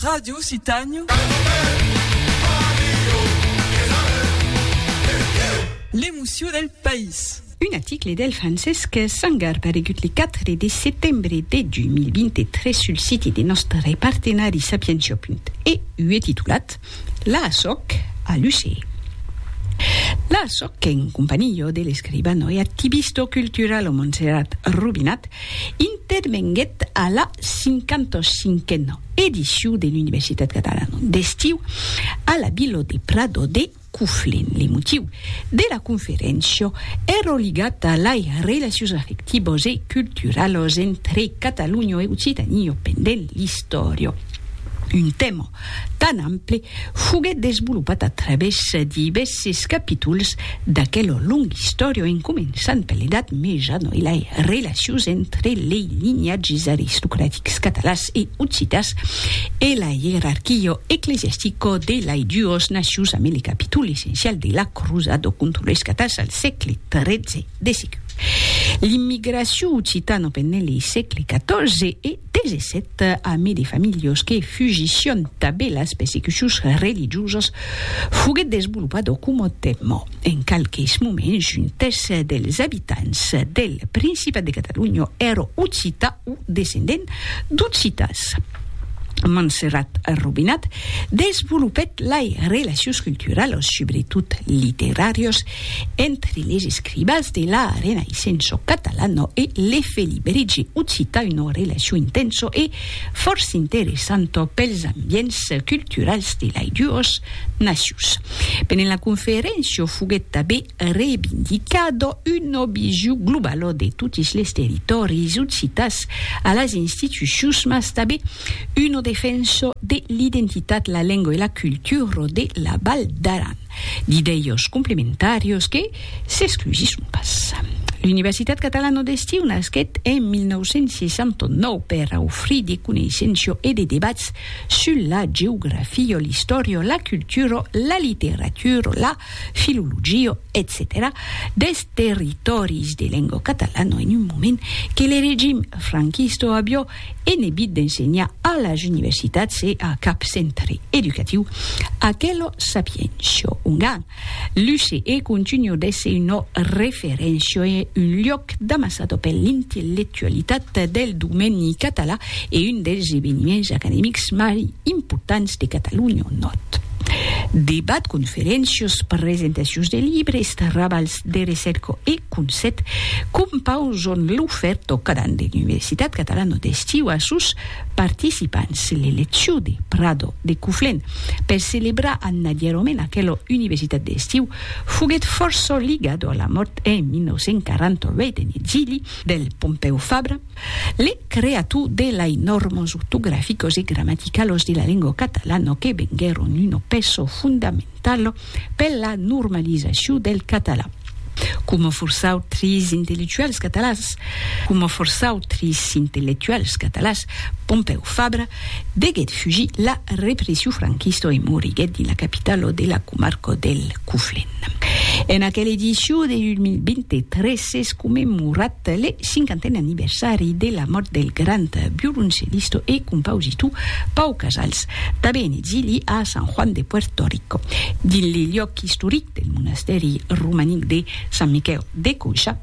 Ràdio Citanho. L'emocion del país. Un article del Francesc Sangar paregut le 4 de setembre de 2023 sul siti de nòstre partenari Sapientia. EU e titulat. La sòc a Lucé. La sòc en companhió de l'escribano e activisto culturalo Montserrat Rubinat intervenguèt a la 55a edicion de l'Universitat Catalana d'Estiu a la Vila de Prado de Conflent. Le motiu de la conferéncia èra ligat a lai relacions afectivos e culturalos entre Catalonha e Occitania pendent l'istòria, un tèma tan ample, foguèt desvolopat a través divèsses capítols d'aquel long istòrion en començant per l'Edat Meja no? e lei relacions entre lei linhatges aristocratics catalans e occitans e la ierarquio ecclesiastico de lei duos nacions amé le capítol essencial de la crusado contra leis catans al sègle XIII de seguit l'immigracion occitano pendent le sègle XIV e Desset ame de familhos que fugission tabé las persecucions religiosas foguet desvolopat au coma tèma en qualques moments un tès dels abitants del Principat de Catalonha èra occità o descendent d'occitans. Manserrat Robinat desvolopèt lai relacions culturalas, subretot literàrias, Entre les escribas de la Renaissenço catalano e l'efeliberigi occita una relacion intenso e fòrça interessanta pels ambients culturals de lai duos nacions. Pendent la conferéncia foguèt tabé rebindicada una vision globala de totis les territòris occitas a las institucions mas tabé una defensa de l'identitat, la lenga e la cultura de la Val d'Aran. D'idèios complementàrios que s'exclusisson pas. L'Universitat Catalano d'Estiu nasquèt en 1969 per aufrir de coneissenço e de debats sul la geografio, l'istòrio, la culturo, la literaturo, la filologio, etcetèra deth territòris de lengo catalano en un moment que le regim franquisto avió en ebit d'ensenhar a las universitats e a cap centre educatiu aquelo sapiencio ongan l'use e continu d'èsser una referéncia e un luòc d'amassada per l'intellectualitat del domeni català e un dels eveniments academics mai importants de Catalonha. Nòt. Debat, conferéncias, presentacions de libres, trabals. de recerca e concept qu'un pauc son l'aufer tocada de l'Universitat Catalana d'Estiu a sos participants, l'elecciu de Prado de Coflen per celebrar an adierament aquela Universitat d'Estiu foguèt fòrça ligada a la mòrt en 1948 en exili del Pompèu Fabra, Le creatu de lai normos ortograficos e grammaticalos de la lengo catalano que venguèron uno pesso fondamentalo per la normalizaciu del catalan, coma fòrça autris intellectuals catalans, coma fòrça autris intellectuals catalans, Pompèu Fabra deguèt fugir la repressiu franquista e moriguèt dins la capitalo de la comarca del Coflent. En aquela ediciu de 2023 s'es commemorat le cinquanten anniversari de la mòrt del grand violoncellista e compositor Pau Casals, tanben exili a San Juan de Puerto Rico. Dins le liòc istoric del monastèri romanic de Sant Miquèu de Coixa,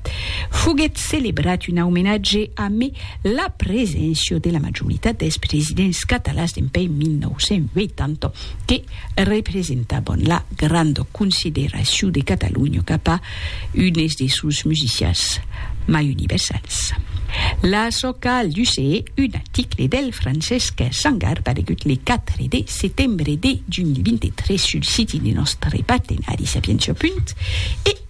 foguèt celebrat un aumenatge amé la preséncia de la majoritat dels presidents catalans dempuèi 1980 que representavan la granda consideracion de Catalonha cap a unes de sos musicians mai universals. La Soca al Duce, un article del Francesc Sangar aparegut le 4 de setembre de 2023 sul siti de nòstre partenari Sapientia. E.